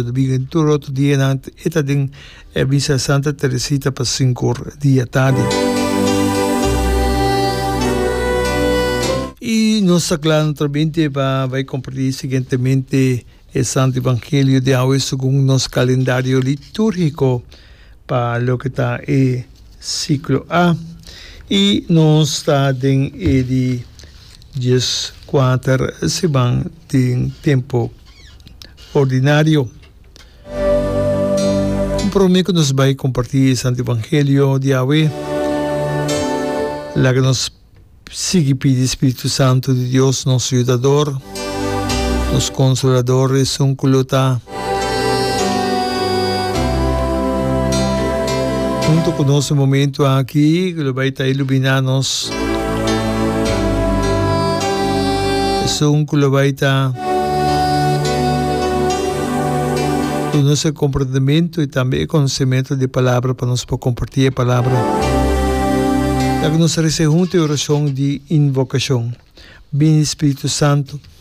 Domingo den tur otro dia nan e ta den e misa Santa Teresita pa sinku or di e tardi. I nos ta kla naturalmente pa bai komparti siguientemente e Santu Evangelio di awe segun nos kalendario litúrgiko pa loke ta e siklo A. I nos ta den e di dies kuater siman den tempu. ordinario. Un prome ku nos bai kompartí e Santu Evangelio di awe, laga nos sigui pidi Spiritu Santu di Dios, nos Yudador, nos Konsolador, esun ku lo ta huntu ku nos e momentu aki, ku lo bai ta iluminá nos. Esun cu lo bay ta duna nos e comprendementu y tambe e conocementu di e Palabra pa nos por comparti e Palabra. Laga nos rece huntu e oracion di invocacion. Bini Spiritu Santu.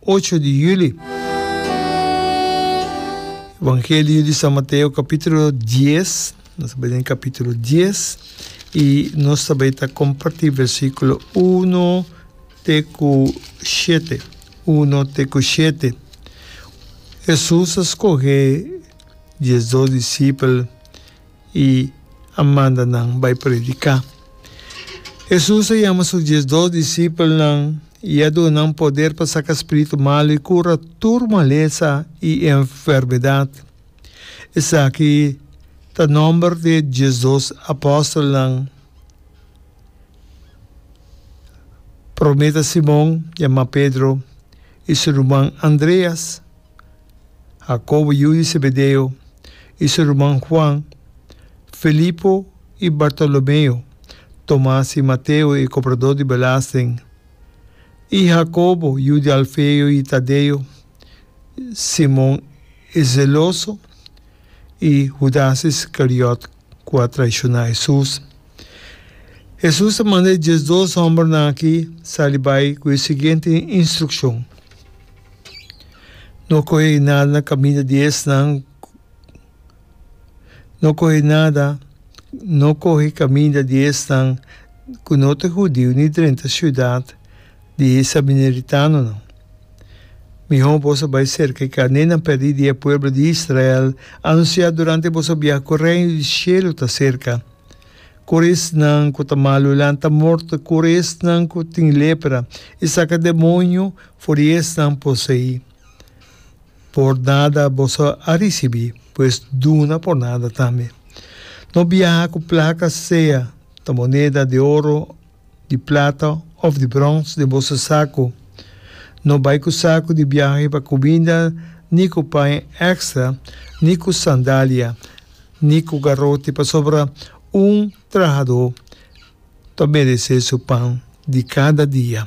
ocho di juli. Evangelio di San Mateo capítulo dies, nos ta bai den capítulo dies y nos ta bai ta comparti versículo uno te cu shete, uno te cu shete. Jesús a scoge diesdos discipel. i a manda nan bai prediká. Hesus a yama su dies dos disipelnan i a duna nan poder pa saka spiritu malu i kura tur malesa i enfermedat. Esaki ta nòmber di e dies dos apòstelnan. Promé ta Simon, yamá Pedro, i su ruman Andreas. Jacobo yu di Zebedeo, i su ruman Juan, Felipo i Bartolomeo, Tomas i Mateo e kopradó di belasting, i Jacobo yu di Alfeo i Tadeo, Simon e zeloso, i Hudas Iskariot ku a traishoná Hesus. Hesus a manda e dies dos hòmbernan akí sali bai ku e siguiente instrukshon, No kohe nada na kaminda di esnan, no kohe nada, no kohe kaminda di esnan ku no ta hudiu ni drenta siudat, di e sabineritanonan. Mihó boso bai serka e karnénan pèrdí di e pueblo di Israel, anunsiá durante boso biaha ku Reino di Shelu ta serka. Kore esnan ku ta malu lanta morto, kore esnan ku tin lepra i saka demonio for di esnan poseí. Por nada boso a risibí, pues duna por nada tambe. No biaha ku plaka sea ta moneda di oro, di plata of di brons den boso saku. No bai ku saku di biahe pa kubinda ni ku paña ekstra ni ku sandalia ni ku garote pasobra un trahadó ta meresé su pan di kada dia.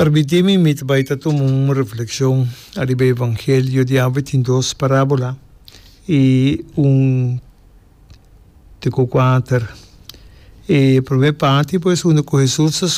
Permitimi mi ta bai ta tuma un reflekshon ariba e Evangelio di awe. Tin dos parábola i un di ku kuater. E promé parti pues unda ku Hesus ta.